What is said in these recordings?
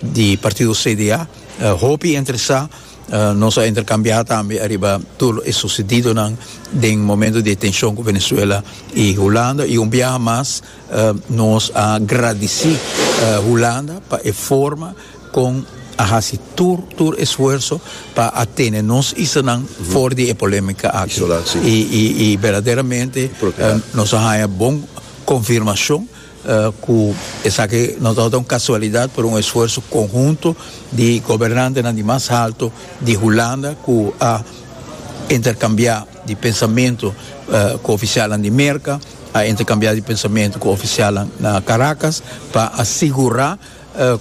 di partido CDA hopi interesá nos a intercambiá tambe ariba tur lo e sucedidonan den momento di e tenshon cu Venezuela y Hulanda y un biaha mas nos a gradici Hulanda pa e forma con a haci tur tur esfuerso pa a tene nos isanan for di e polemica aki y verdaderamente nos a haya bon confirmacion cu esaki no tabata un casualidad pero un esfuerzo conhunto di gobernantenan di mas halto di Hulanda cu a intercambia di pensamento cu oficialnan di Merca, a intercambia di pensamento cu oficialnan na Caracas pa a sigura.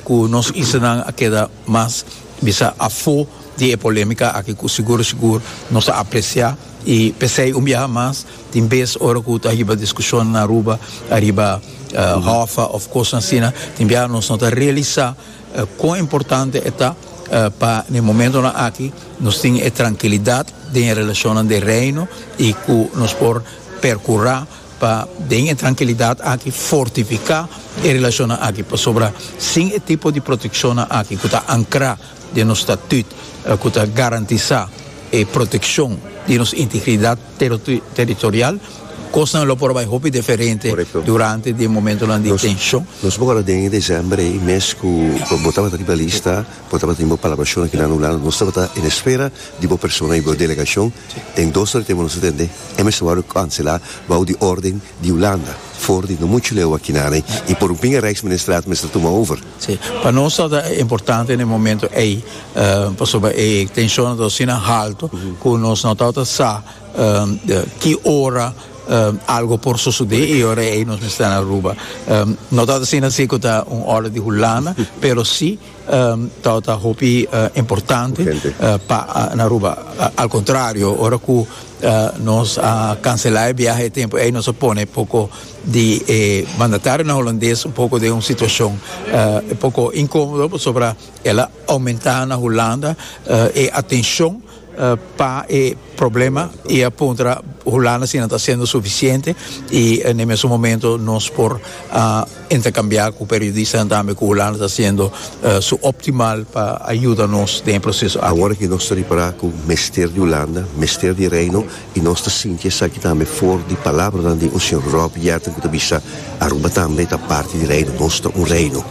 Cu nos issanan a keda mas bisa afo di e polemica aki cu sigur sigur nos ta aprecia y pesey un biaha mas tin bes ora cu ta hiba discusion na Aruba ariba hofa of cosnan asina tin biaha nos no ta realisa con importante e ta pa n'e momentonan aki nos tin e trankilidad den e relacionnan den Reino y cu nos por percura Pa den e trankilidat aki fortifiká e relashonnan aki pasobra sin e tipo di protekshonnan aki ku ta ankrá den nos statüt ku ta garantisá e protekshon di nos integridat teritorial kosnan lo por bai hopi deferente durante di e momentonan di tenshon. Nos por ora den e desèmber ei mes ku bo tabata riba lista. Bo tabatin bo palabra shona kila anulando. Nos tabata en espera di bo persona y bo delegacion den dos ora di tempo nos a tende e mester wòrdu cancela bou di orden di Hulanda for di no mucho leu aki naden y por un pinga Rijksministraat mester tuma over. Sí, pa nos tabata importante n'e momento ey pasobra e tencionnan ta asina halto cu nos no tabata sa ki ora algo por sucede y ora ey nos mester na Aruba. No tabata asina si cu ta un orden di Hulanda pero si. ta hopi importante pa na Aruba al contrario ora cu nos a cancela e biaha e tempo ey nos a pone e poco di e mandatario Holandes un poco den un situacion un poco incomodo pasobra el a aumenta na Hulanda e atencion pa e problema y a puntra hulanda si nan ta hacendo suficiente y n'e mesun momento nos por intercambia cu periodistanan tambe cu hulanda ta hacendo su optimal pa ayuda nos den e proceso aki. Awor aki nos ta ripara cu mester di hulanda, mester di Reino. I nos ta sinti esaki tambe for di palabranan di un señor Rob Yetton ku ta bisa, Aruba tambe ta parti di reino, nos ta un reino.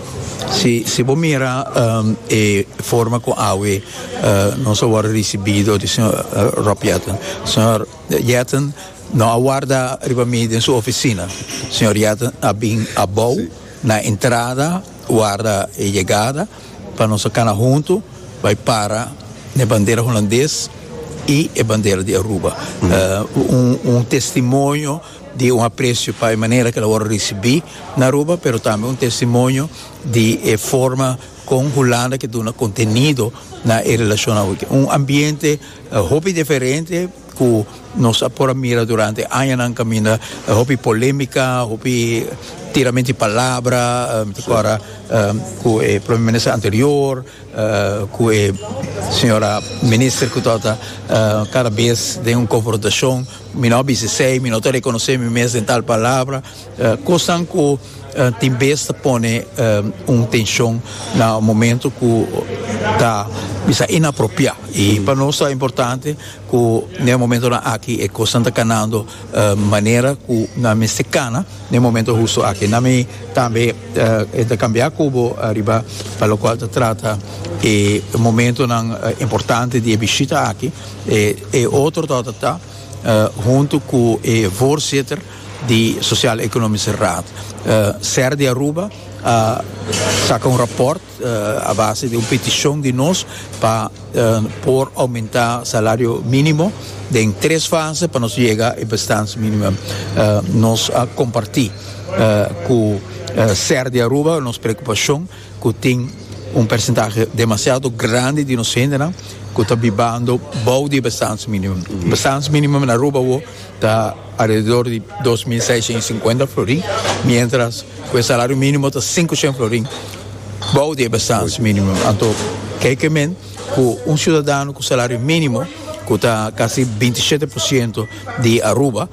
Si si bo mira e forma ku awe nos a wòrdu risibido di señor Rob Yetton, señor Yetton no a warda riba mi den su ofisina, señor Yetton a bin abou na entrada warda e yegada. pa nos a cana hunto bay para n'e bandera Hulandes y e bandera di Aruba. Un testimonio di un aprecio pa e manera cu el a worde ricibi na Aruba pero tambe un testimonio di e forma con Hulanda ke duna contenido na e relacionnan. Un ambiente hopi diferente. Cu nos a por a mira durante añanan caminda hopi polemica, hopi tiramento di palabra, mi ta corda cu e Prome Minister anterior, cu e Sra. Minister cu ta ota cada bes den un confrontacion, mi no a bisa esey, mi no ta reconoce mi mes den tal palabra, cosnan cu tin bes ta pone un tencion na momento cu ta bisa inapropia y pa nos ta importante. Cu n'e momentonan aki e cosnan ta canando manera cu nan mester cana n'e momento husto aki. Nan mi tambe e ta cambia cu bo ariba pa locual ta trata e momentonan importante di e bishita aki. E otro torta ta hunto cu e voorzitter di Sociaal-Economische Raad, ser di Aruba a saca un rapport. a base di un peticion di nos pa por aumenta salario minimo den tres fase pa nos yega e bestans minimum nos a comparti cu ser di Aruba nos preocupacion cu tin un percentahe demasiado grandi di nos hendenan cu ta bibando bou di e bestans minimum, bestans minimum na Aruba awo Ta alrededor di dos mil seishen i sinkuenta florin, miéntras ku e salario mínimo ta sinku shen florin bou di e bestans mínimo. Anto kei ke men ku un siudadano ku salario mínimo, ku ta kasi binti shete por siento di Aruba,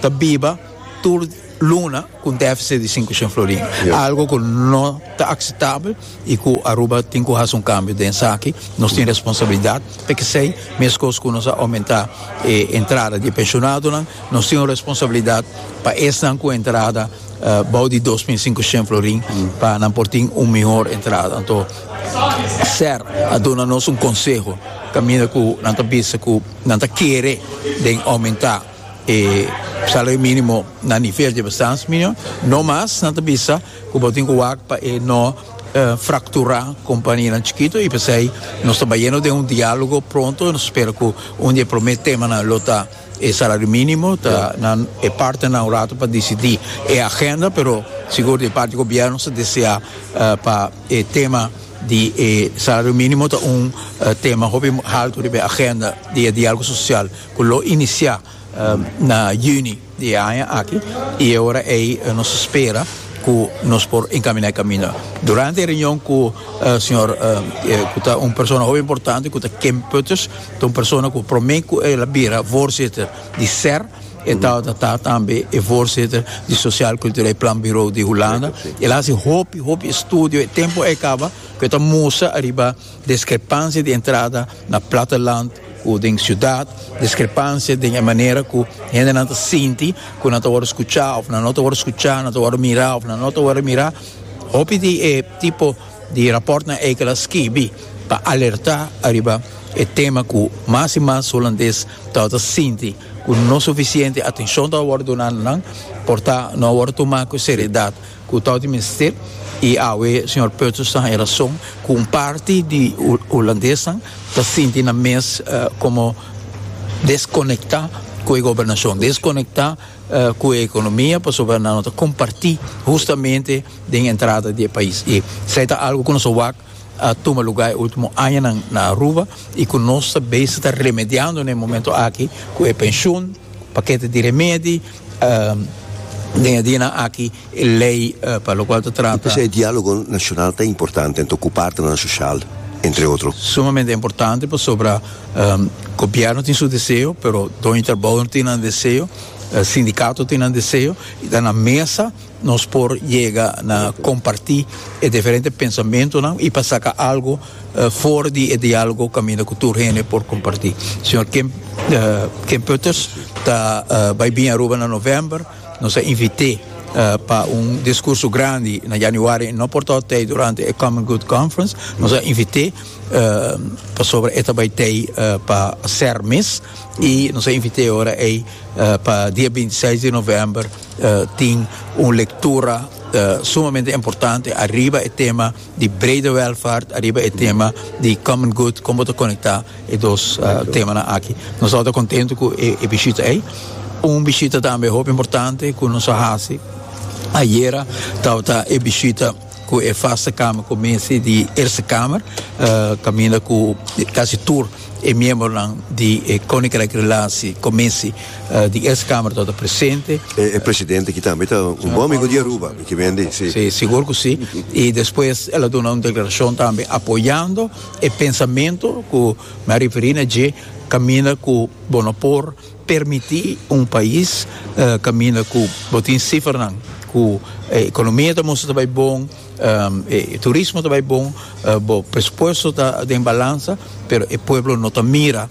ta biba tur. Luna cu un deficit di sinku shen florin, algo cu no ta acceptabel y cu Aruba tin cu haci un cambio den esaki, nos tin responsabilidad pa esey, mescos cu nos a aumenta e entrada di e pensionadonan, nos tin un responsabilidad pa esnan cu entrada bao di dos mil sinku shen florin pa nan por tin un mihor entrada, anto Ser a duna nos un conseho caminda cu nan ta bisa cu nan ta kere den aumenta. E salario minimo na nivel dje bestans minio, no mas nan ta bisa ku bo tin ku wak pa e no frakturá kompanianan chikitu i p'esei nos ta bayendo den un diálogo pronto i nos spera ku un di e promé temanan lo ta e salario minimo ta nan e partenan un ratu pa disidí e agenda pero sigur di parti gobièrnu nos ta deseá pa e tema di e salario minimo ta un tema hopi haltu riba e agenda di e diálogo sosial. cu lo inicia na juni di e aña aki y e ora ey nos spera cu nos por encamina e camino. Durante e reunion cu señor cu ta un persona hopi importante cu ta Kim Putters, ta un persona cu prome cu el a bira voorzitter di ser, e tabata ta tambe e voorzitter di Sociaal Cultureel Planbureau di Hulanda. El a haci hopi, hopi estudio, e tempo a caba cu e ta musa ariba Diskrepansia di entrada na plataland ku den siudat, diskrepansia den e manera ku hendenan ta sinti ku nan ta wòrdu skuchá òf nan no ta wòrdu skuchá, nan ta wòrdu mirá òf nan no ta wòrdu mirá, hopi di e tipo di rapòrtnan ei ku el a skibi ta alertá ariba e tema ku mas i mas hulandes tabata sinti ku no sufisiente atenshon tabata wòrdu duná na nan, por ta no a wòrdu tumá ku seridat. Cu tau di mester y awe señor Peutsers ta haya razon cu un parti di Hulandesan ta sinti nan mes como desconecta cu e gobernacion, desconecta cu e economia pasobra nan no ta comparti hustamente den entrada di e pais y esai ta algo cu nos a wak tuma lugar e ultimo añanan na Aruba y cu nos ta bezig ta remediando na e momento aki cu e pension, pakete di remedi. Den e dianan aki e lei pa lokual ta trata. I p'esei e dialogo nashonal ta importante anto ku partenan soshal, entre otro. Sumamente importante pasobra gobièrnu tin su deseo, pero doño trabou tin nan deseo, sindikato tin nan deseo, i ta na mesa Nos por yega na kompartí e diferente pensamentunan i pa saka algu for di e diálogo kaminda ku tur hende por kompartí. Señor Kim Kim Putters ta bai bini Aruba na novèmber. Nos a invit'é pa un diskurso grandi na yanüari i no por ta hout'ei durante e Common Good Conference. Nos a invit'é pasobra e ta bai t'ei pa ser mes i nos a invit'é ora ei pa dia binti seis di novèmber. tin un lectura sumamente importante ariba e tema di brede welvaart ariba e tema di common good con bo ta conecta e dos temanan aki nos tabata contento cu e bishita ey un bishita tambe hopi importante cu nos a haci ayera tabata e bishita cu e vaste kamer cu mester di Eerste Kamer, caminda cu casi tur e miembronan di e Koninkrijk Relatie Commissie di Eerste Kamer tabata presente. E presidente ki tambe ta un bon amigo di Aruba, mi kimen di, si. Si, sigur cu si. Y despues el a duna un declaracion tambe apoyando e pensamento cu mi a referi na dje, caminda cu bo no por. permití un pais kaminda ku bo tin sifernan ku e ekonomia ta mustra ta bai bon, e turismo ta bai bon, bo presupuesto ta den balansa, pero e pueblo no ta mira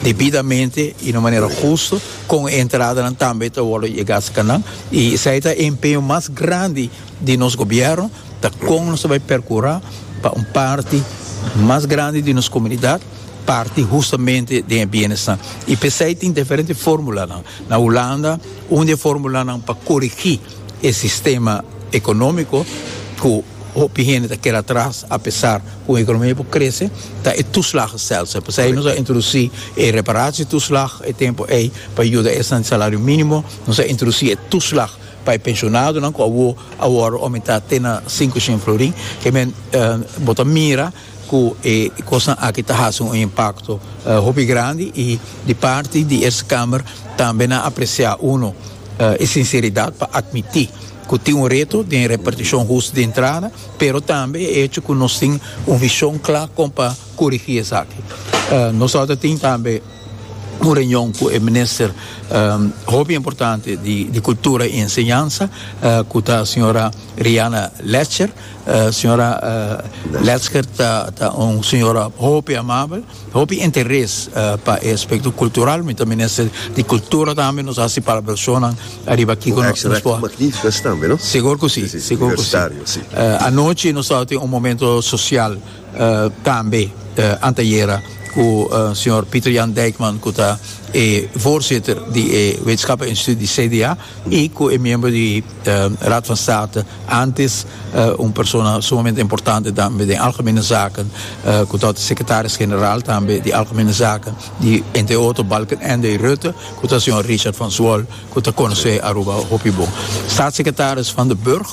debidamente i na manera hustu kon e entradanan tambe ta wòrdu yegá serka nan. I esei ta e empeño mas grandi di nos gobièrnu, ta kon nos ta bai perkurá pa un parti mas grandi di nos komunidat, parti hustamente den e bienesnan y pesey tin diferente formulanan na Hulanda un di e formulanan pa corigi e sistema economico cu hopi hende ta keda atras apesar cu e economia por crece ta e toeslagen selfs pesey nos a introduci e reparatie toeslag e tempo ey pa yuda esnan di salario minimo nos a introduci e toeslag pa e pensionadonan cu awo a worde aumentá te na sinku shen florin kemen bo ta mira cu e cosnan aki ta haci un impacto hopi grandi y di parti di Eerste Kamer tambe nan aprecia uno e sinceridad pa admiti cu tin un reto den reparticion justo di entrada pero tambe e hecho cu nos tin un vision cla con pa curigi esaki. Nos otro tin tambe un reunion cu e Minister hopi importante di Cultura y Enseñanza cu ta Sra. Riana Lecher. Señora Lesker ta un señora hopi amabel, hopi interes pa e aspecto cultural, mi ta minister di cultura tambe, nos haci palabracionnan ariba kico nos por. Un acto magnifico tambe, no? Segur cu si, segur cu si. Anochi nos tabatin un momento social. Tambe antayera ku señor Pieter Jan Dijkman ku ta e voorzitter di e Wetenschappen Instituut di CDA i ku e miembro di Raad van State antes un persona sumamente importante tambe den algemene zaken ku ta outa secretaris general tambe di algemene zaken di entre otro Balkenende Rutte ku ta señor Richard van Zwol ku ta konosé Aruba hopi bon. Staatssecretaris Van den Burg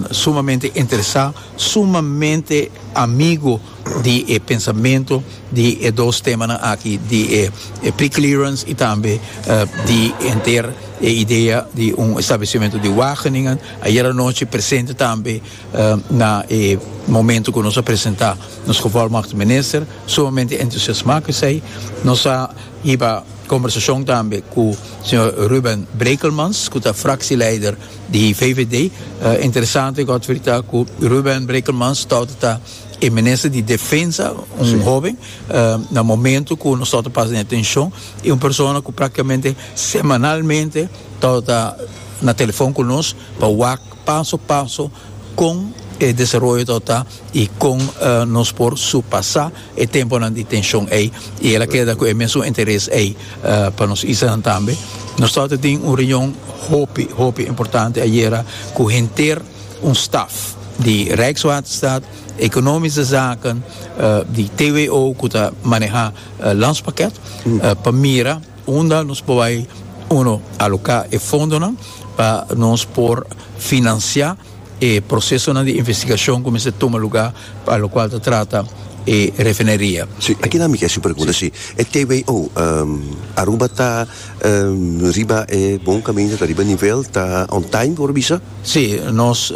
sumamente interesa. sumamente amigo di e pensamento di e dos temanan aki, di e preclearance y tambe di henter e idea di un establecimento di Wageningen. Ayer anochi presente tambe na e momento cu nos a presenta nos gevolmagtig minister, sumamente entusiasma cu esey. Nos a hiba conversacion tambe cu señor Ruben Brekelmans cu ta fractieleider. Di VVD ta interesante Godfrey ta cu Ruben Brekelmans torta ta e minister di Defensa, un hoben, na momento cu nos torta pasa den tension y un persona cu practicamente semanalmente torta ta na telefon cu nos pa wak paso paso con e desaroyo torta ta. i kon nos por surpasá e tempunan di tenshon ei i el a keda ku e mesun interes ei pa nos isanan tambe. Nos tabata tin un reunion hopi hopi importante ayera ku henter un staf di Rijkswaterstaat, Economische Zaken, di TWO ku ta manehá Landspakket pa mira unda nos por bai uno aloká e fondonan pa nos por finansiá. e prosesonan di investigashon ku mester tuma lugá pa lokual ta trata e refineria. Sí, aki nan mi ke hasi un pregunta, sí. E TWO, Aruba ta riba e bon kaminda, ta riba e nivel, ta on time por a bisa? Sí, nos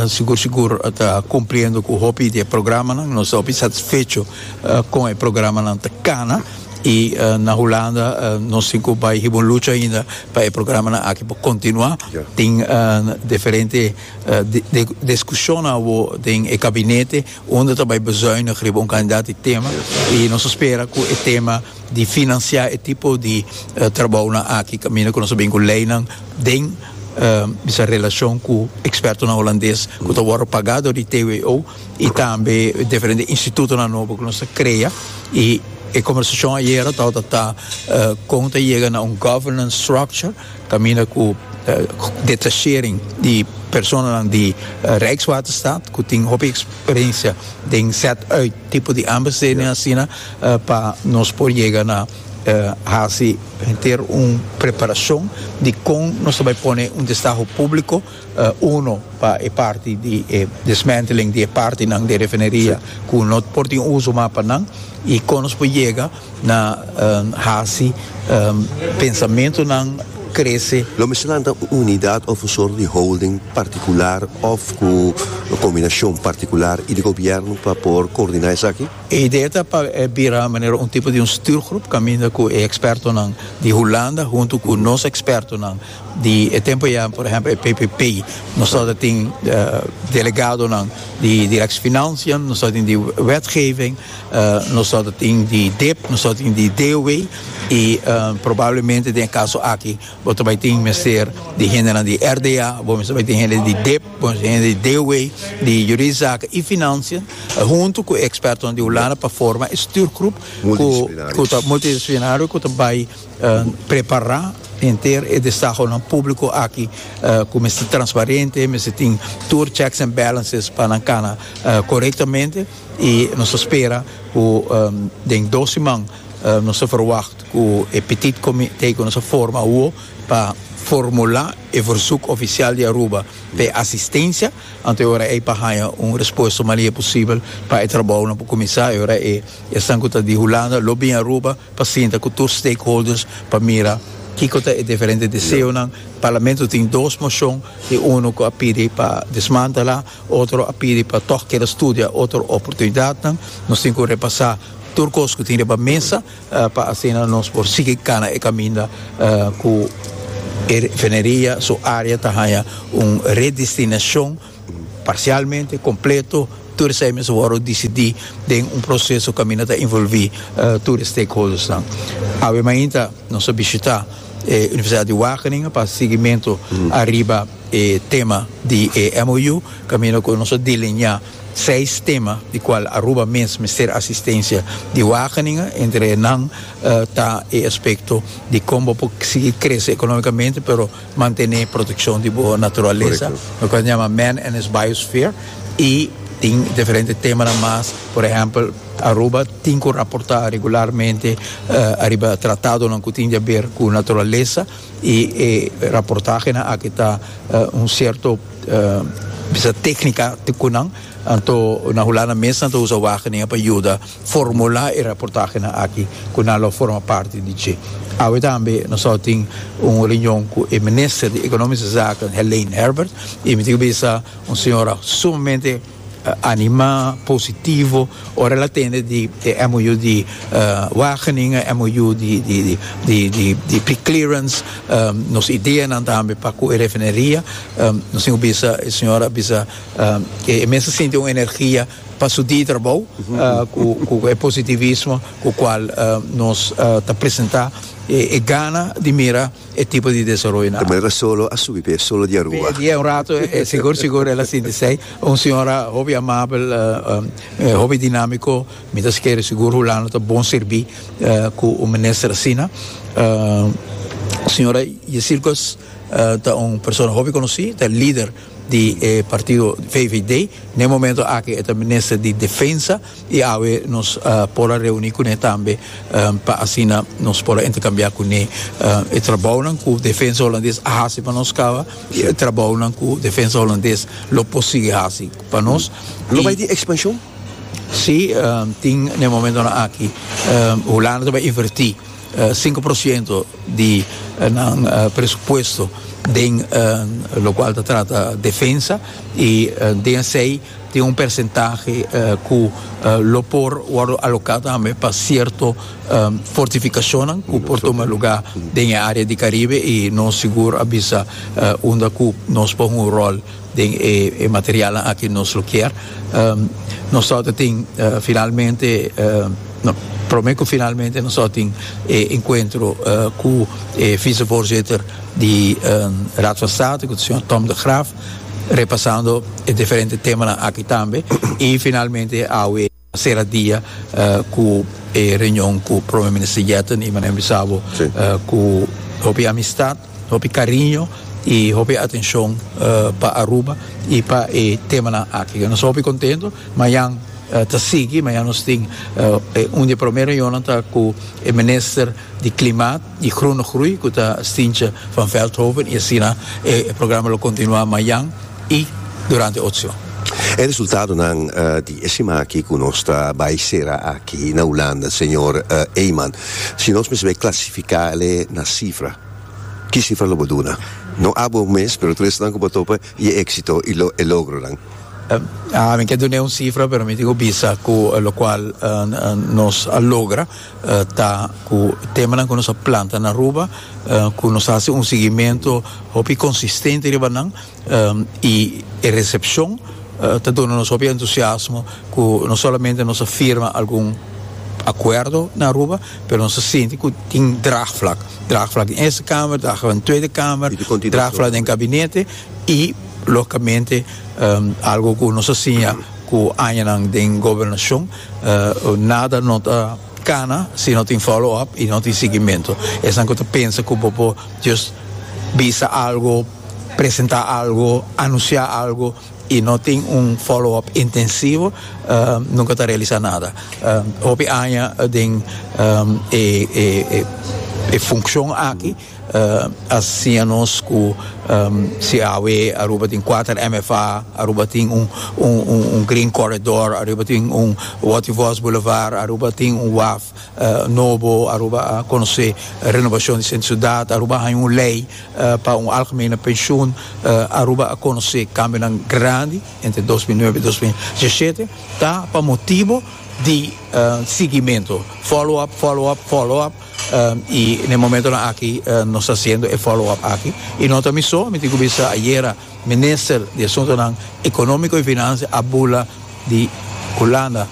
sigur sigur ta kumpliendo ku hopi di e programanan, nos ta hopi satisfecho kon e programanan ta kana i na Hulanda nos tin ku bai hiba un lucha ainda Pa e programanan aki por kontinuá tin diferente diskushonnan awor den e gabinete unda ta bai bezuinig riba un kantidat di tema i nos ta spera ku e tema di finansiá e tipo di trabounan aki kaminda ku nos a bin ku leinan den bisa relashon ku ekspertonan holandes ku ta wòrdu pagá dor di TWO. y tambe diferente institutonan nobo cu nos ta crea y e conversacion ayera tabata ta con ta yega na un governance structure caminda cu detachering di personanan di Rijkswaterstaat cu tin hopi experiencia den set uit tipo di aanbestedingen asina pa nos por yega na haci henter un preparacion di con nos ta bay pone un destaho publico. Uno pa e parti di e dismantling di e partinan di e refineria cu no por tin uso mas pa nan y con nos por yega na haci pensamentonan crece. Lo mester lanta un unidad of un sort di holding particular of cu un combinacion particular y di gobierno pa por coordina esaki? E idea ta pa bira manera un tipo di un stuurgroep caminda cu e expertonan di Hulanda hunto cu nos expertonan. Di e tempo ya por ehempel e PPP nos ta tin delegadonan di directfinancian, nos ta tin di wetgeving, nos ta tin di dip, nos ta tin di DOW y probablemente den e caso aki bo ta bay tin mester di hendenan di RDA, bo mester bay tin hende di dip, bo mester tin hende di DOW, di juridisch zaken y financian hunto cu e expertonan di Hulanda pa forma e stuurgroep cu ta multidisciplinario cu ta bay Prepará henter e desahonan públiko aki ku mester transparente, mester tin tur checks and balances pa nan kana korektamente i nos ta spera ku den dos siman nos ta verwagt ku e petit komité ku nos a forma awo ta formulá e versuk ofisial di Aruba pa e asistensia anto e ora ei pa haña un respuesta manier posibel pa e trabounan por kuminsá e ora esnan ku ta di Hulanda lo bin Aruba. pa sinta cu tur stakeholders pa mira kico ta e diferente deseonan. Parlamento tin dos mocion y uno cu a pidi pa desmantela, otro a pidi pa toch keda studia otro oportunidadnan. Nos tin cu repasa tur cos cu tin riba mesa pa asina nos por sigui cana e caminda cu e refineria su area ta haya un redestinacion parsialmente, kompleto, tur esei mester wòrdu disidí den un proseso kaminda ta involví tur e stakeholdersnan. Awe mainta nos a bishitá e Universidat di Wageningen pa sigimentu ariba e tema di e MOU, kaminda ku nos a delineá seis tema di kual Aruba mes mester asistensia di Wageningen. Entre nan ta e aspekto di kon bo por sigui krese ekonómikamente, pero. Mantené protekshon di bo naturalesa, loke ta yama Man and his Biosphere, i tin diferente temanan mas, por ehèmpel, Aruba tin ku raportá regularmente ariba tratadonan ku tin di a ber ku naturalesa i e raportahenan aki ta un sierto bisa téknika ku nan, anto na Hulanda mes nan ta usa wagenen pa yuda. formulá e raportahenan aki ku nan lo forma parti di dje. Awe tambe nos a tin un reunion ku e Minister di Ekonomische Zaken, Helein Herbert, i mi tin ku bisa un señora sumamente animá, positivo, ora el a tende di e MOU di Wageningen, e MOU di preclearance, nos ideanan tambe pa ku e refineria. Nos tin ku bisa e señora a bisa ku e mester sinti un energia pa su di trabou cu e positivismo cu cual nos ta presenta e gana di mira e tipo di desaroyo na. Tambe lo ta solo a subi p'e solo di Aruba. P'e dia un rato e sigur sigur el a sinti esey. Un señora hopi amabel, hopi dinamico. Mi ta skere sigur Hulanda ta bon sirbi cu un minister asina. Señora Yesilgus ta un persona hopi conoci, ta e lider. di e partido VVD, na e momento aki e ta minister di Defensa y awe nos por a reuni cu ne tambe pa asina nos por a intercambia cu ne e trabounan cu Defensa Holandes a haci pa nos caba y e trabounan cu Defensa Holandes lo por sigui haci pa nos. Lo bay tin expansion? Si, tin na e momentonan aki Hulanda ta bay inverti. sinku por siento di nan presupuesto den lokual ta trata defensa i den esei tin un persentahe ku lo por wòrdu aloká tambe pa sierto fortifikashonnan ku por tuma lugá den e área di Karibe i nos sigur a bisa unda ku nos por hunga un ròl. den e materialnan aki nos lo kier. Nos tabata ta tin finalmente, no, prome ku finalmente nos tabata tin e enkuentro ku e visevoorzitter di Raad van State, ku ta señor Tom de Graaf, repasando e diferente temanan aki tambe i finalmente awe. Sera dia ku e reunion ku Prome Minister Yetten i Manuel Misabu ku hopi amistat, hopi kariño i hopi atenshon pa Aruba i pa e temanan aki. Nos ta hopi kontentu. Mañan ta sigui. Mañan nos tin un di e promé reunionnan ta ku e Minister di Klimaat. di Groene Groei cu ta Stientje van Veldhoven y asina e programa lo continua mayan y durante otro. E resultadonan di e sima aki cu nos ta bay cera aki na Hulanda, señor Eyman, si nos mester bay clasifica ele na cifra, ki cifra lo bo duna? No abo mes, pero tres nan cu bo topa y e exito y e logronan. Mi ke dun'e un cifra, pero mi tin cu bisa cu locual nos a logra. ta ku temanan ku nos a planta na Aruba ku nos hasi un siguimentu hopi konsistente riba nan i e resepshon ta duna nos hopi entusiasmo ku no solamente nos a firma algun akuerdo na Aruba pero nos a sinti ku tin dragvlak dragvlak den Eerste Kamer dragvlak den Tweede Kamer dragvlak den Gabinete i logikamente algu ku nos a siña ku añanan den Gobernashon. Nada no ta cana si no tin follow up y no tin siguimento. Esanan cu ta pensa cu bo por just bisa algo, presenta algo, anuncia algo y no tin un follow up intensivo nunca ta realisa nada. Hopi aña den e funcion aki. a siña nos cu si awe Aruba tin cuater MFA, Aruba tin un un green corridor, Aruba tin un Wattie Vos Boulevard, Aruba tin un waf nobo, Aruba a conoce renovacion di centro ciudad, Aruba a haña un ley pa un algemene pensioen, Aruba a conoce cambionan grandi entre dos mil nuebe y dos mil diesisiete, ta pa motibo di siguimento, follow up, follow up, follow up. y n'e momentonan aki nos ta haciendo e follow up aki y no ta mi so mi tin cu bisa ayera minister di asuntonan economico y financia a bula di Hulanda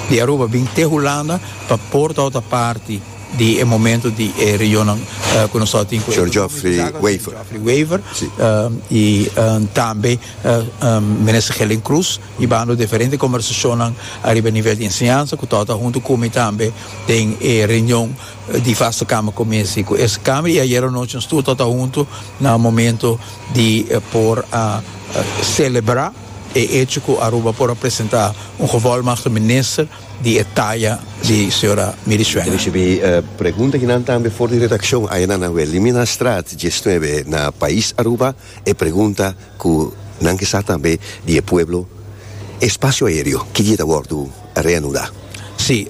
di Aruba bin te Hulanda pa por tabata parti di e momento di e reunionnan cu nos a tin cu Sor Geoffrey Wever y tambe minister Helen Cruz. I bando diferente kombersashonnan ariba e nivel di enseñansa ku Tòt a huntu ku mi tambe den e reunion di Vaste Kamer Kominsy ku Eerste Kamer i ayero anochi nos tur Tòt a huntu na momentu di por a selebrá e echo ku Aruba por a presentá un Gevolmagde Minister di e taya di señora Miri Schwenger. Risibí pregunta kinan tambe for di redakshon ayenan na Wilhelmina Straat diesnuebe na Pais Aruba. E pregunta ku nan ke sa tambe di e pueblo, E spasio aereo ki dia ta wòrdu reanudá? Sí,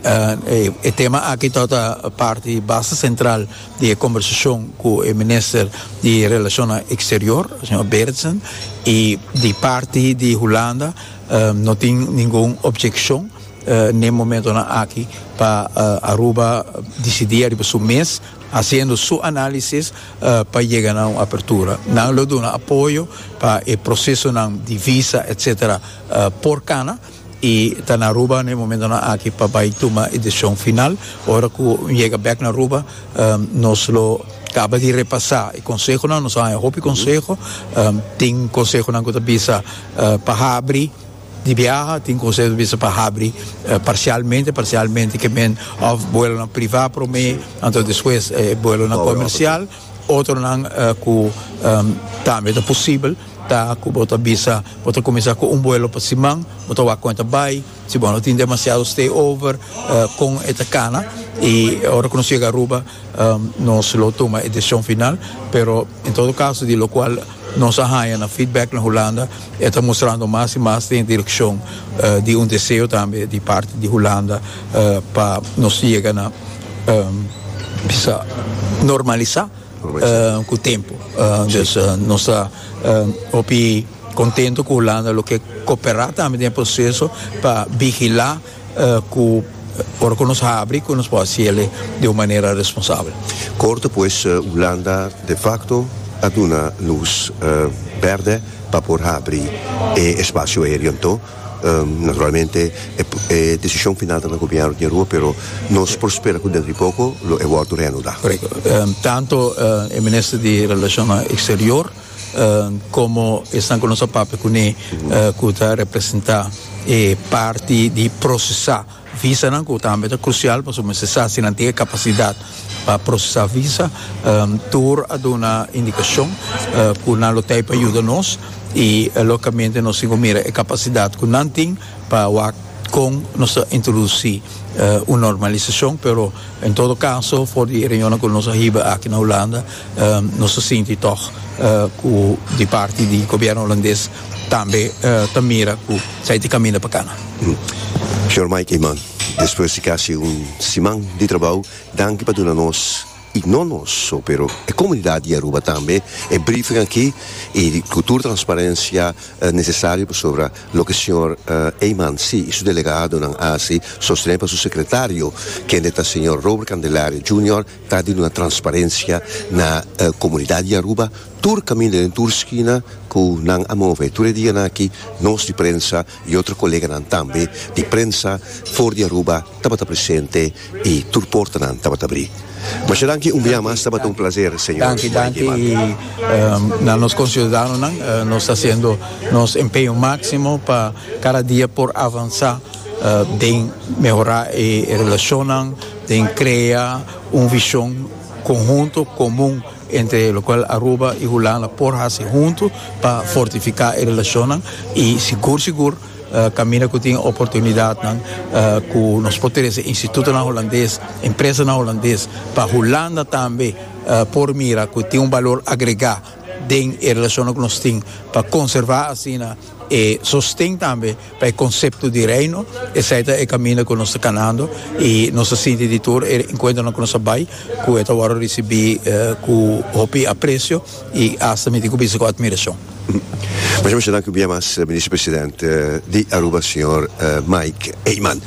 e tema aki tor ta parti basta sentral di e kombersashon ku e minister di Relashonnan Eksterior, señor Berendsen, i di parti di Hulanda no tin ningun objekshon n'e momentonan aki pa Aruba disidí ariba su mes hasiendo su análisis pa yega na un apertura. Nan lo duna apoyo pa e procesonan di visa etc. Por cana y ta na Aruba na e momentonan aki pa bay tuma e decision final. Ora cu un yega bek na Aruba nos lo caba di repasa e consehonan, nos a haña hopi conseho. Tin consehonan cu ta bisa pa habri. Di biaha tin conseho bisa pa habri parcialmente parcialmente ke men of buelonan priva prome anto despues e buelonan comercial otronan ku tambe ta posibel ta ku bo ta bisa bo ta cuminsa cu un buelo pa siman bo ta wak con e ta bay si bo no tin demasiado stay over con e ta cana y ora cu nos yega Aruba Nos lo tuma e decision final pero en todo caso di locual nos a haya na feedback na Hulanda e ta mostrando mas y mas den direccion di un deseo tambe di parti di Hulanda pa nos yega na bisa normalisa cu tempo. Dus nos ta hopi contento cu Hulanda lo ke coopera tambe den e proceso pa vigila. cu ora cu nos habri cu nos por haciele di un manera responsabel. Kort despues Hulanda de facto a duna luz berde pa por habri e espacio aereo anto naturalmente e decision final ta na gobierno di Rua pero nos por spera cu dentro di poco lo e wordo reanuda. Correcto. Tanto e Minister di Relacionnan Exterior. Komo esnan ku nos a papia kuné ku ta representá e parti di prosesá visanan ku tambe ta krusial pasobra mester sa si nan tin e kapasidat pa prosesá visa tur a duna indikashon ku nan lo tei pa yuda nos i lokamente nos tin ku mira e kapasidat ku nan tin pa wak kon nos ta introdusí un normalisashon pero en todo kaso for di e reunionnan ku nos a hiba aki na Hulanda Nos ta sinti tòg ku di parti di gobièrnu holandes tambe ta mira ku esei ta kaminda pa kana. Señor Mike Eman, despues di kasi un siman di trabou, danki pa duna nos, i no nos so, pero e komunidat di Aruba tambe, e briefing aki i ku tur transparensia nesesario pasobra loke señor Eman si i su delegadonan a hasi, sostené pa su sekretario, kende ta señor Robert Candelaria Junior, Ta di una transparencia na comunidad di Aruba, tur caminda den tur skina cu nan a move tur e dianan aki, nos di prensa y otro coleganan tambe di prensa for di Aruba tabata presente y tur portanan tabata bri. Masha danki un bia mas, tabata un placer señor Slayman. Den krea un vishon konhunto komun entre lokual Aruba i Hulanda por hasi huntu pa fortifiká e relashonnan i sigur sigur kaminda ku tin oportunidatnan ku nos por trese institutonan hulandes, empresanan hulandes pa Hulanda tambe por mira ku tin un balor agregá den e relashonnan ku nos tin pa konservá asina. E sosten tambe pa e konsepto di Reino, esei ta e kaminda ku nos ta kanando i nos ta sinti di tur e enkuentronan ku nos a bai ku e ta wòrdu risibí ku hopi apresio i asta mi tin ku bisa ku atmirashon. Mucha mucha danki un bia mas Minister President di Aruba señor Mike Eman.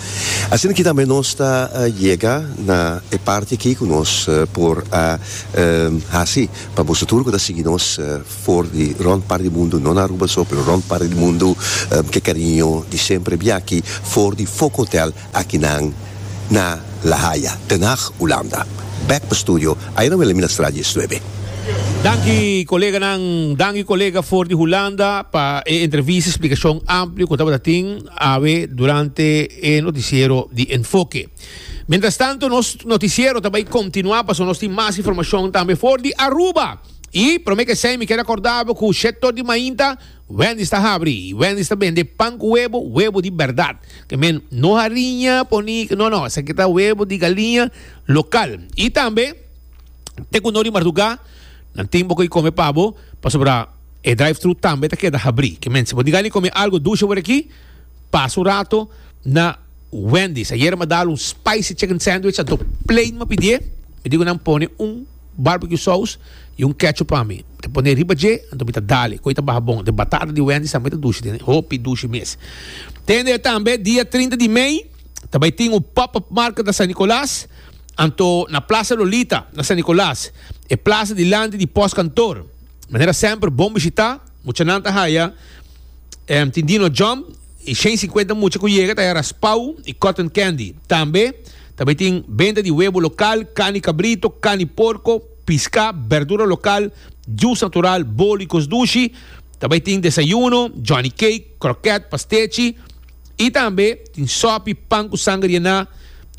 Asina aki tambe nos ta yega na e parti aki ku nos por a hasi pa boso tur ku ta sigui nos. for di rond par di mundu no na Aruba so pero rond par di mundu ke kariño di semper bia aki for di Foco Hotel aki nan na La Haya Den Haag Hulanda bek pa studio ayran wele mi na straat dies nuebe. Danki koleganan, danki kolega for di Hulanda pa e entrevista splikashon amplio ku tabata tin awe durante e notisiero di Enfoke. Mientrastanto nos notisiero ta bai kontinuá pasobra nos tin mas informashon tambe for di Aruba. I promé ke esei mi keda kordabo ku shektor di mainta, Wendy's ta habri i Wendy's ta bende pan ku webo, webo di bèrdat. Ke men, no hariña poní, no no, esaki ta webo di galiña lokal. I tambe te ku no di mardugá nan tin bo ke kome pa bo, pasobra e drive-thru tambe ta keda habri. Ke men, si bo diga ni kome algu dushe wor aki, pasa un rato na Wendy's. Ayer mi a dal un spicy chicken sandwich, a do plein mi a pidié, mi diku nan pone un. Barbecue sous y un ketchup pa mi ta pone riba dje anto mi ta dale cu e ta baha bon den batata di Wendy's tambe ta dushi den hopi dushi mes tende tambe dia trinta di mei ta bay tin un pop up market na San Nicolas anto na plaza Lolita na San Nicolas e plaza dilanti di post kantoor manera semper bon bishita. Muchanan ta haya em tin Dino Jump y shen cincuenta mucha cu yega ta haya raspau y cotton candy. Tambe ta bay tin benta di webo local, cani cabrito, cani porco, pisca, berdura local, jus natural, bolo y cos dushi. Ta bay tin desayuno, Johnny Cake, croquet, pastechi. I tambe tin sòpi, pan ku sanger yená,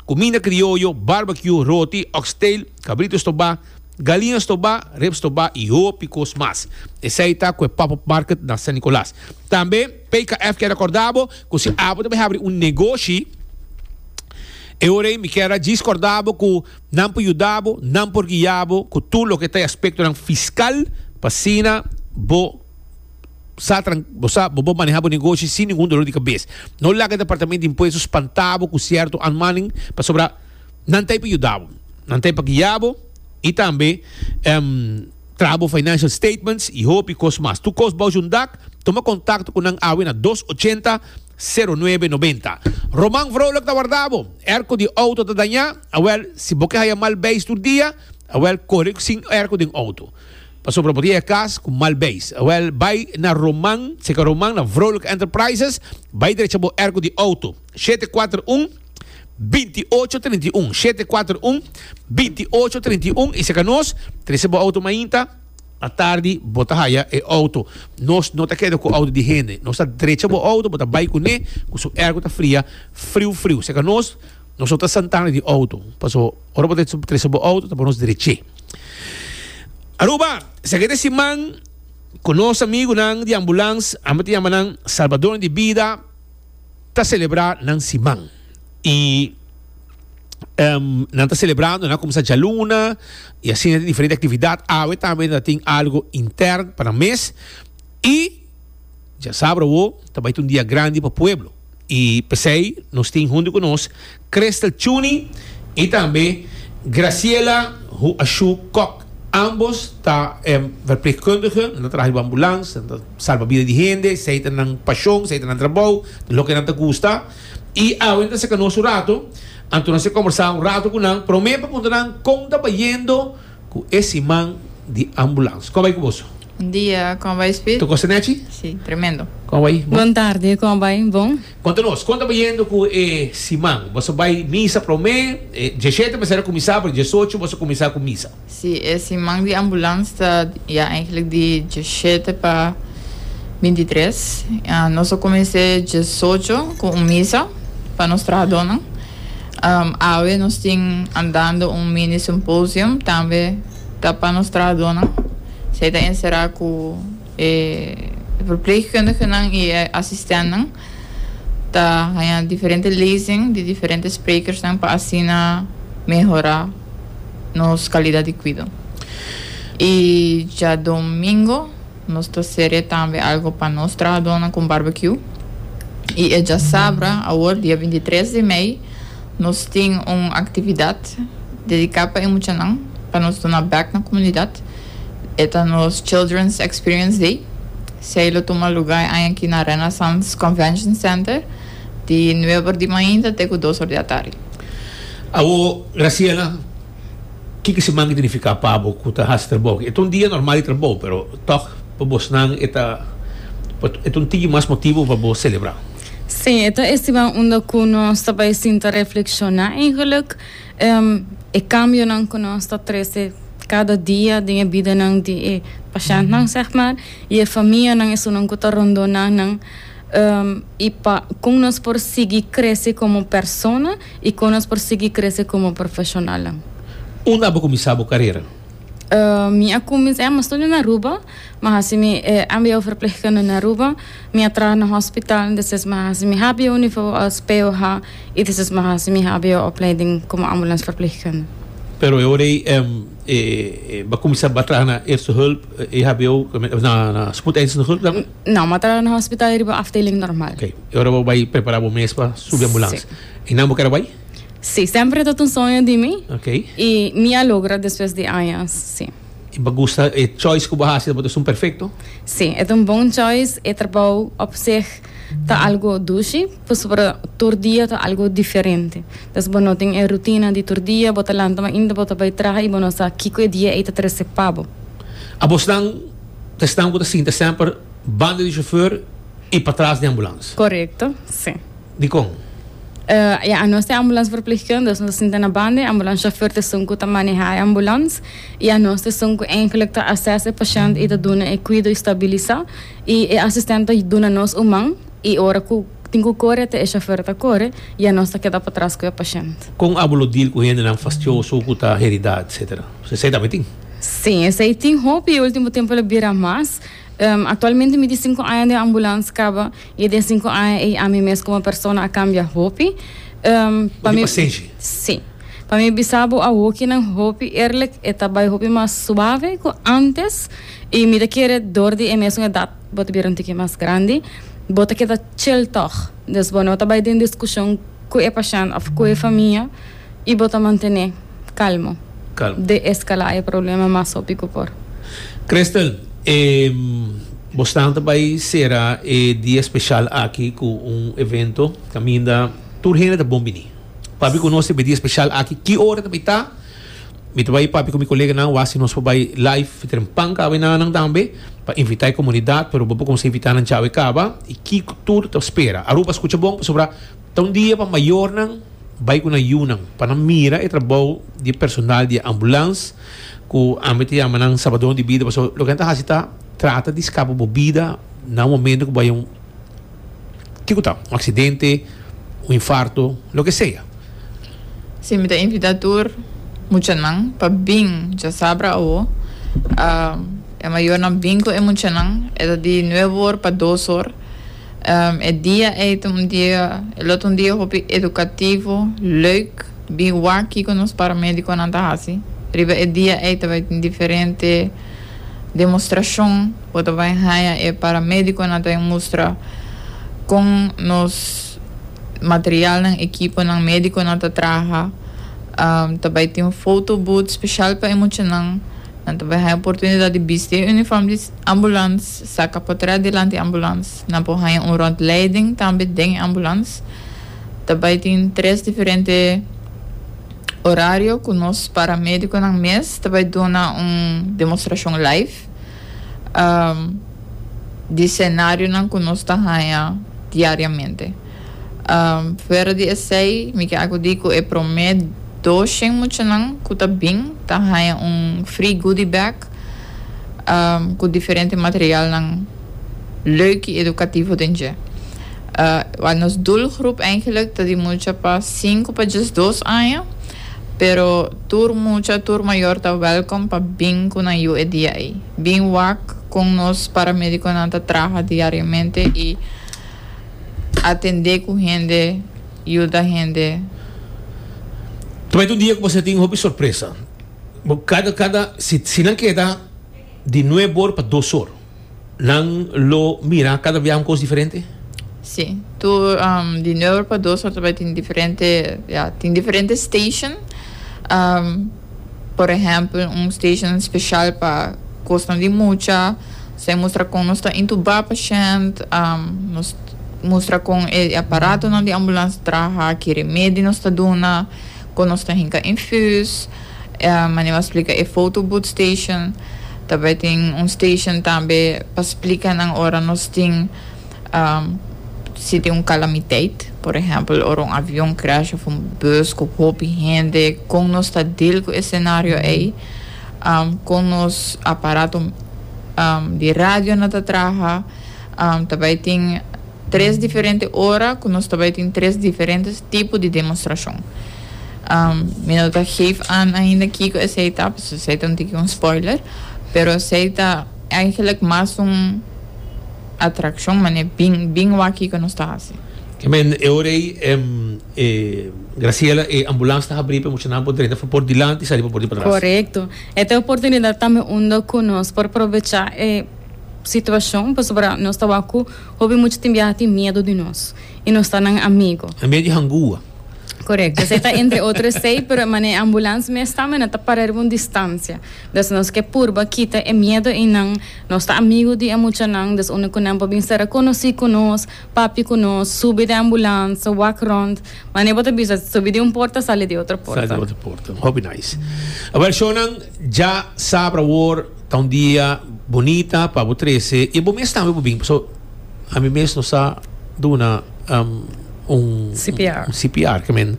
kuminda krioyo, barbecue, roti, oxtail, kabrito stobá, galinha stobá, rep stobá i hopi kos mas. Esei ta ku e pop-up market na San Nicolas. Tambe PKF kier akorda bo ku si abo ta bai habri un negoshi, e ora ei mi kier a djis korda bo ku nan por yuda bo, nan por guia bo ku tur loke ta e aspektonan fiskal pa asina bo sa tran bo sa bo por maneha bo negoshi sin ningun dolor di kabes no laga departamento di impuesto spanta bo ku sierto anmaning pasobra nan ta ey pa yuda bo nan ta ey pa guia bo y tambe traha bo financial statements y hopi kos mas tur kos boush un dak tuma contacto ku nan awe na dos ochenta sero nuebe nobenta Roman Vrolijk ta warda bo erco di auto ta daña awel si bo ke haya mal beis tur dia awel kore sin erco den auto. Pasobra bo tin e kas ku mal beis. Wèl, bai na Roman, serka Roman, na Vrolijk Enterprises, bai drecha bo erko di outo, shete kuater un, binti ocho trinta i un, shete kuater un, binti ocho trinta i un, i serka nos, trese bo outo mainta, na tardi bo ta haya e outo, nos no ta keda ku outo di hende, nos ta drecha bo outo, bo ta bai kuné, ku su erko ta fria, friu friu, serka nos. Nos no ta santá na di outo, paso ora bo ta trese bo outo ta por nos derech'é. Aruba, esaki ta e siman ku nos amigunan di ambulans, ami ta yama nan salbadornan di bida, ta selebrá nan siman. I nan ta selebrando, nan a kuminsá djaluna i asina tin diferente aktividat. Awe tambe nan ta tin algu intèrn pa nan mes i dja sabra awo ta bai ta un dia grandi pa pueblo. y p'esey nos tin hunto cu nos Crystal Chuni y tambe Graciela Hu Ashu Kok. Ambos ta verpleegkundige, nan ta traha riba ambulans, nan ta salba bida di hende, esey ta nan pasion, esey ta nan trabou, ta loke nan ta gusta. Y awe nan ta seca nos un rato, anto nos a combersa un rato cu nan, prome pa puntra nan con ta bayendo, ku e siman di ambulans. Kon bai ku boso? Bon dia, kon bai Speed? Ta gosa Nechi? Si, tremendo. Kon bai? Bon. Bon tarde, kon bai? Bon. Konta nos, kon ta bayendo ku e siman? Boso bai misa promé? Djeshete mester a kuminsá pero diesocho boso kuminsá ku misa. Si, e siman di ambulans ta ya enklik di djeshete pa binti tres. Nos a kumins'é diesocho ku un misa pa nos trahadónan. Awe nos tin andando un mini symposium tambe ta pa nos trahadonan. Esei ta encerá cu e verpleegkundigenan y e asistentnan. Ta haña diferente lezing di diferente sprekersnan pa asina mehorá nos calidad di cuido. Y djadomingo. Nos ta seria tambe algo pa nos trahadónan ku Barbecue i e djasabra awor dia binti tres di mei nos tin un aktividat dediká pa e muchanan pa nos duna bèk na komunidat. E ta nos Children's Experience Day. Sei lo tuma lugá e aña aki na Renaissance Convention Center di nueber di mainta te ku dos or di atardi. Awor Graciela Kiko si manki ta nifiká pa bo ku ta hasi trabou? E ta un dia normal di trabou, pero tòg pa bosnan e ta e ta un tiki mas motibu pa bo selebrá. Sí, e ta estimá unda ku nos ta bai sinta reflekshoná eigelik e kambionan ku nos ta trese kada dia den e bidanan di e pashèntnan, sègmàr, i e famianan, esunnan ku ta rondó nan. i pa kon nos por sigui krese komo persona i kon nos por sigui krese komo profeshonalnan. Unda abo kuminsá bo karera? Mi a kuminsá, ya mi a studia na Aruba, mi a hasi mi e mbo verpleegkunde na Aruba, mi a traha na hospital, despues mi a hasi mi hbo nivo als POH i despues mi a hasi mi hbo opleiding komo ambulans verpleegkunde. Pero e ora ei bo a kuminsá bo a traha na Eerste Hulp, EHBO, na Spoedeisende Hulp tambe? No, m'a tra na hospital e riba afdeling normal. Ok, e ora bo bai prepara bo mes pa subi ambulans. Si. E nan bo keda bai? Si, semper e tabata un soño di mi. Ok. I mi a logra despues di añas, si. I bo gusta e choice ku bo hasi, ta esun perfekto? Si, e ta un bon choice, e trabou op seg ta algu dushi, pasobra tur dia ta algu diferente. Entonces bo no tin e rutina di tur dia, bo ta lanta mainta bo ta bai traha i bo no sa kiko e dia ei ta trese pa bo. Abos nan. Esnan ku ta sinta semper banda di shofèr i patras di ambulansa. Korekto, si. Dikon? Ya, anos ta e ambulansverplegkundige, nos ta sinta na banda. E ambulansshofer ta esun ku ta manehá e ambulans i anos ta esun ku eigenlijk ta asès e pashènt i ta duna e kuido i stabilisá. I e asistent ta duna nos un man i ora ku tin ku kore te e shofèr ta kore i anos ta keda patras ku e pashènt. Kon abo lo deal ku hendenan fastioso ku ta heridá etsetera? Paske esei tambe tin. Sí, esei tin hopi e último tempu a bira mas. Aktualmente mi di sinku aña den ambulans kaba i e den sinku aña ei ami mes komo persona a kambia hopi. Pa mi, sí, pa mi bisa bo awokinan hopi eerlijk, e ta bai hopi mas suave ku antes i mi ta kere dor di e mesun edat bo ta bira un tiki mas grandi bo ta keda chill tòg. Dus bo no ta bai den diskushon ku e pashènt òf ku e famia I bo ta mantené kalmo. Kalmo. De eskalá e problema mas hopi ku por. Crystal, e Bostan ta bai sera e dia speshal aki ku un evento kaminda tur hende ta bon bini. Papia ku nos riba e dia speshal aki. Ki ora ta bai ta? Mi ta bai papia ku mi koleganan wak si nos por bai live tren pan kaba i nannan tambe pa invitá e komunidat, pero bo por kumsa invitá nan chawe kaba. I ki tur ta spera? Aruba skucha bon pasobra. Ta un dia pa mayornan bai ku nan yunan pa nan mira e trabou di e personal di e ambulans ku ami ta yama nan sabadon di bida pasobra loke nan ta hasi ta trata di skapa bo bida na un momento ku bo bai un ke ku ta un aksidente un infarto loke sea. Si mi ta invita tur muchanan pa bin djasabra awo e mayornan bin ku e muchanan e ta di nueve or pa dos or. E dia ei ta un dia, e lo ta un dia hopi edukativo, leuk, bin wak kiko nos paramédikonan ta hasi. Riba e dia ei ta bai tin diferente demostrashon ku ta bai haña e paramédikonan ta bin mustra kon nos materialnan, ekiponan, médikonan ta traha. Ta bai tin un foto booth speshal pa e muchanan. Nan ta bai haña oportunidat di bisti e unifòm di ambulans. Saca por trae dilanti ambulans. Nan por haña un rondleiding tambe den e ambulans. Ta bay tin tres diferente horario cu nos paramedeconan mes ta bay duna un demostracion live di scenarionan cu nos ta haña diariamente. Fuera di esey mi ke acudi cu e prome doshien muchanan cu ta bin ta haña un free goodie bag. cu diferente materialnan leuk y educativo den dje. Wa nos doelgroep eigenlijk ta di mucha pa cinco pa djes dos aña, pero tur mucha, tur mayor ta welkom pa bin cu nan yu e dia ey. Bin wak con nos paramediconan ta traha diariamente y atende cu hende, yuda hende. Promete un dia cu bo ser tin hopi sorpresa. Bo kada kada si si nan keda di nuebe or pa dos or nan lo mira kada biaha un kos diferente? Si, tur di nuebe or pa dos or ta bai tin diferente ya tin diferente station por ehempel un station special pa kosnan di mucha so e mustra kon nos ta intuba pashent nos mustra kon e aparatonan di ambulans ta traha ki remedi nos ta duna Kon nos ta hinka infus, Mane wou a splika e foto booth station. Ta bai tin un station tambe pa splika nan ora nos tin si tin un kalamiteit, por ehèmpel ora un avion crash of un bus ku hopi hende, kon nos ta dil ku e senario ei, kon nos aparato di radio na ta traha, ta bai tin. Tres diferente ora cu nos ta bay tin tres diferente tipo di demostracion. Mi no ta geef aan ainda kico esey ta, pasobra esey ta un tiki un spoiler, pero esey ta eigenlijk mas un atraccion, mane bin, bin wak kico nos ta haci. I mean, e ora ey e Graciela e ambulance ta habri pa e muchanan por drenta pa por dilanti y sali pa por di patras. Corecto. E ta e oportunidad tambe unda cu nos por probecha e situacion, pasobra nos ta wak cu. Hopi mucha tin biaha tin miedu di nos y nos ta nan amigo. E medio hangua. Correcto. Esey ta entre otro esey, pero e manera ambulance mes ta, mena ta para riba un distancia. Entonces nos ke purba kita e miedo ey nan. Nos ta amigo di e muchanan, dus unda cu nan por bin sera conoci cu nos, papia cu nos, subi den ambulance, wak rond. Manera bo ta bisa, subi di un porta, sali di otro porta. Sali di otro porta. Hopi nice. Awel, shownan dja sabra awor. Ta un dia bunita pa bo trece y bo mes tambe bo bin paso a mi mes no sa duna um, un CPR. un CPR que men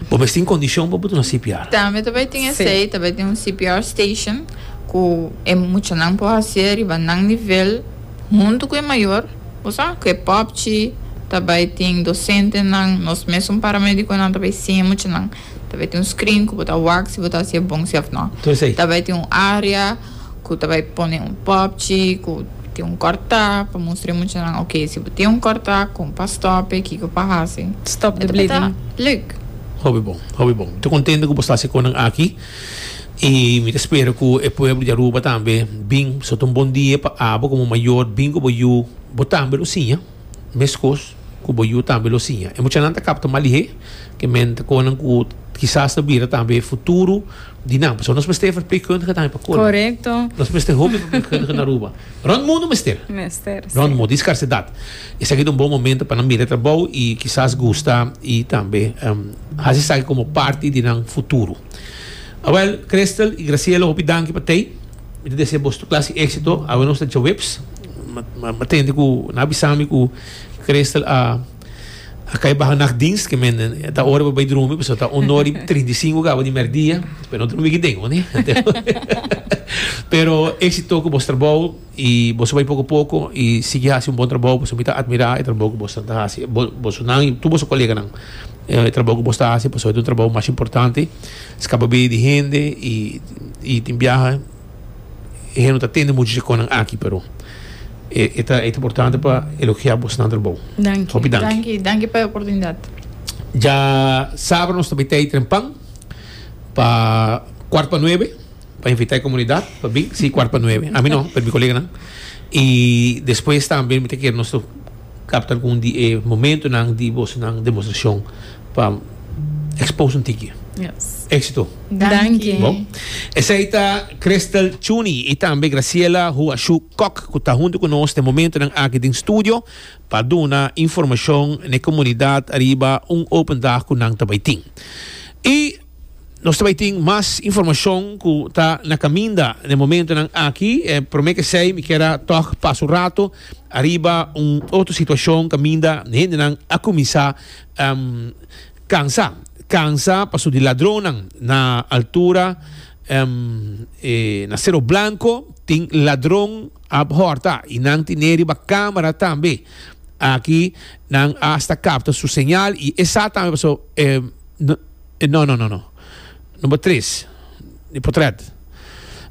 bo mes tin condicion pa bo duna CPR. Tambe ta bai tin Sí. esei, ta bai tin un CPR station ku e muchanan por hasié riba nan nivel huntu ku e mayor, bo sa, ku e popchi, ta bai tin dosentenan, nos mesun paramédikonan ta bai sin e muchanan. Ta bai tin un screen cu bo ta wak si bo ta haci'e bon si of no. Ta bai tin un area cu ta bai pone un popchi cu tin un corta pa mustr'e muchanan ok si bo tin un corta con pa stop'e kico pa haci. Stop the bleeding. E ta bai ta leuk. Hopi bon, hopi bon. Mi ta contento cu bo sta haci conan aki y mi ta spera cu e pueblo di Aruba tambe bin. Pasobra ta un bon dia pa abo como mayor bin cu bo yu bo tambe lo siña. Mescos cu bo yu tambe lo siña. E muchanan ta capta mal dihé cu e menteconan cu kisas ta bira tambe e futuro di nan. Pasobra nos mester verpleegkundige tambe pa colmo. Correcto. Nos mester hopi verpleegkundige na Aruba. Rond mundo mester. Mester, si. Rond mundo. Di scarcedad. Esaki ta un bon momento pa nan mira e trabou y kisas gusta y tambe haci esaki como parti di nan futuro. Awel, Christel y Graciela hopi danki pa tey. Mi ta desea bos tur klas di éksito awe nos ta djaweps. M'a tende ku nan a bisa mi ku Christel a kai baha nachtdienst. Ke men ta ora pa bai drumi pasobra ta un ora i trinta i sinku kaba di mèrdia. Pero no ta wiki den, oné? Pero éksito ku bos trabou i boso bai poko poko i sigui hasi un bon trabou pasobra mi ta atmirá e trabou ku boso nan ta hasi, bosonan i tur boso koleganan. E trabou ku bos ta hasi pasobra ta un trabou mas importante. Skapa bida di hende i tin biaha e hende no ta tende muchu djakonnan aki, pero e ta importante pa elogiá bos nan trabou. Hopi danki. Danki, danki pa e oportunidat. Dja sabra nos ta bai tei Trempan pa kuart pa nuebe. Pa invita e comunidad pa bin si cuart pa nuebe. A mi no, pero mi coleganan. Y despues tambe mi ta kere nos ta capta algun di e momentonan di bosonan demostracion pa expose un tiki. Yes. Éxito. Danki. Bo. Esei ta Crystal Chuni y tambe Graciela Huashu Kok cu ta hunto cu nos den momentonan aki den studio pa duna informacion n'e comunidad ariba un open dag cu nan ta bay tin. Y. Nos ta bai tin mas informashon ku ta na kaminda den momentunan aki. E promé ke esei mi kier a tòg pasa un ratu ariba un otro situashon kaminda hendenan a kuminsá kansa. Kansa pasobra di ladronnan. Na altura e na Sero Blanko tin ladron ap hòrta i nan tine riba kamera tambe. Aki nan asta kapta su señal i e sa tambe pasobra e. E no, no, no, no. Number tres di potret.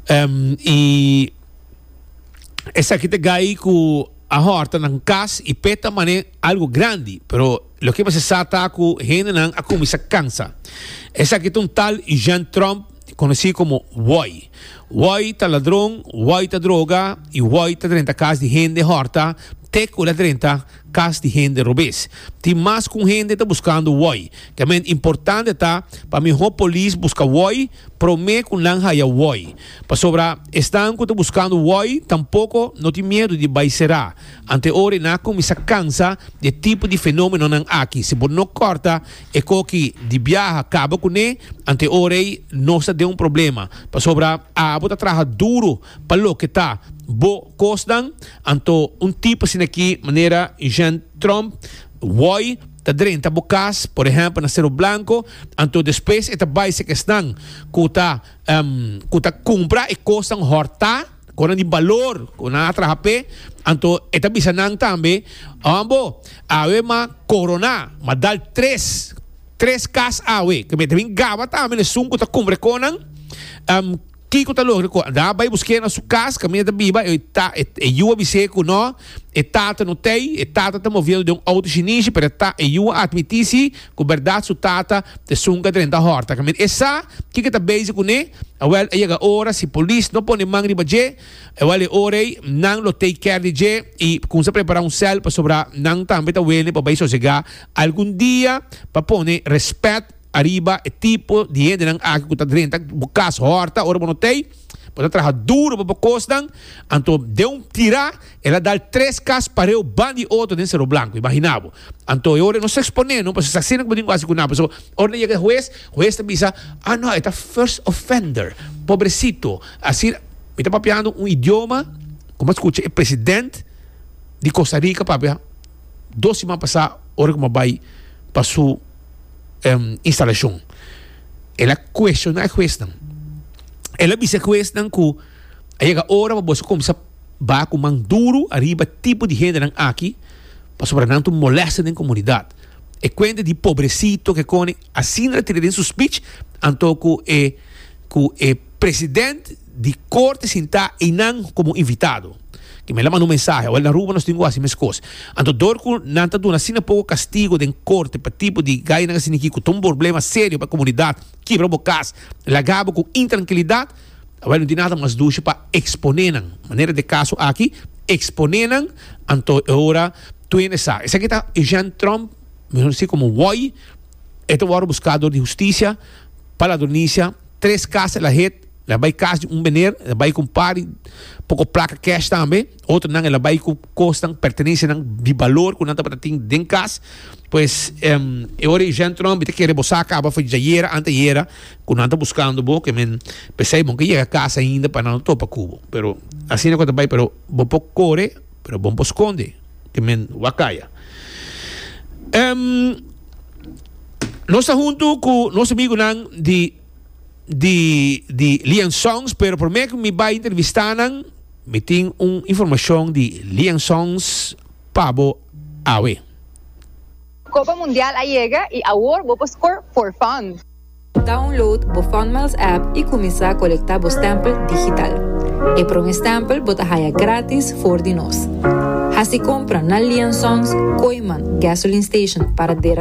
Em, i esaki ta gai ku a hòrta nan kas i pet ta man'é algu grandi, pero loke mester sa ta ku hendenan a kuminsá kansa. Esaki ta un tal Eugène Tromp konosí komo wòi. Wòi ta ladron, wòi ta droga i wòi ta drenta kas di hende hòrta te ku el a drenta. Cas di hende robes. Tin mas cu un hende ta buscando woi. Camen importante ta pa miho polis busca woi prome cu nan haya woi. Pasobra esnan cu ta buscando woi tampoco no tin miedo di bay cera. Ante ora e na cuminsa cansa di e tipo di fenomenonan aki. Si bo no corta e coki di biaha caba cune, ante ora ey no sa den un problema. Pasobra abo ta traha duro Pa loke ta bo kosnan, anto un tipo asin'akí manera Jent Trump wòi ta drenta bo kas, por ehèmpel na Seru Blanko, anto despues e ta bai sek esnan ku ta ku ta kumpra e kosnan hòrtá, kosnan di balor ku nan a traha p'e, anto e ta bisa nan tambe, Hòn bo, awe m'a koroná, m'a dal tres tres kas awe, ku mi ta bin gaba tambe n'esun ku ta kumpra e kosnan. Kiko ta logra ku Adá bai busk'é na su kas kaminda e ta biba? E yu a bis'é ku no, e tata no t'ei. E tata ta moviendo den un outer shinishi, pero e yu a atmití sí ku bèrdat su tata ta esun ka drenta hòrta. Kaminda e sa kiko ta bezi kuné, awèl a yega ora, si polis no pone man riba dje, awèl e ora ei nan lo take care di dje i kumsa prepará un sèl pasobra nan tambe ta wene pa bai sosegá algun dia pa pone rèspèt Ariba e tipo di hendenan aki ku ta drenta bo kas hòrta ora bo no t'ei, bo ta traha duru pa bo kosnan, anto den un tirá el a dal tres kas pareu ban di oto den Sero Blanku, imaginá bo. Anto e ora nos eksponé no, pasobra asina ku bo tin ku hasi ku nan, pasobra ora nan yega e hues, hues ta bisa, ah no, e ta first offender, pobrecito, asina, mi ta papiando un idioma ku mi a skucha e president di Costa Rica papia dos siman pasá ora ku mi a bai pa su. instalacion. El a cuestiona e huesnan. El a bisa e huesnan cu a yega ora pa boso cuminsa ba cu man duru ariba e tipo di hendenan aki pasobra nan ta un molesta den comunidad. E cuenta di Pobrecito ke koni, asina el a tira den su speech, anto cu e cu e president. di corte sinta y nan como invitado que me la manda un mensahe o el na Aruba nos tin guasi mes cos anto door cu nan ta duna asina poco castigo den corte pa tipo di gayanan asina aquí cu ta un borblema serio pa comunidad kibra bo cas laga bo cu intrankilidad awel no tin nada mas dushi pa expone nan manera de caso aki expone nan anto e ora tuyen e sa esaki ta Eugène Trump mihor conoci como Woy e ta worde busca door di husticia pa la donicia tres cas el a het. El a bai cas di un meneer, el a bai cu un par di poco placa cash tambe. Otronan el a bai cu cosnan, pertenencianan di balor cu nan tabata tin den cas. Pues em, e ora Eugène Tron bi ta kere bo sa caba for djayera, anteayera, cu nan ta buscando bo, cu men pesey bo no ke yega cas ainda pa nan no topa cu bo. Pero asina cu ta bai, pero bo por core, pero bo no por sconde, cu men wak caya. Em, nos ta hunto cu nos amigunan di. di di Lian Songs pero prome cu mi bay intervista nan mi tin un informacion di Lian Songs pa bo awe. Copa Mundial a yega y awor bo por score for fun! Download bo Funmiles app y cuminsa colecta bo stempel digital. E prome stempel bo ta haya gratis for di nos. Haci compra na Lian Songs, Kooiman, Gasoline Station, Paradera,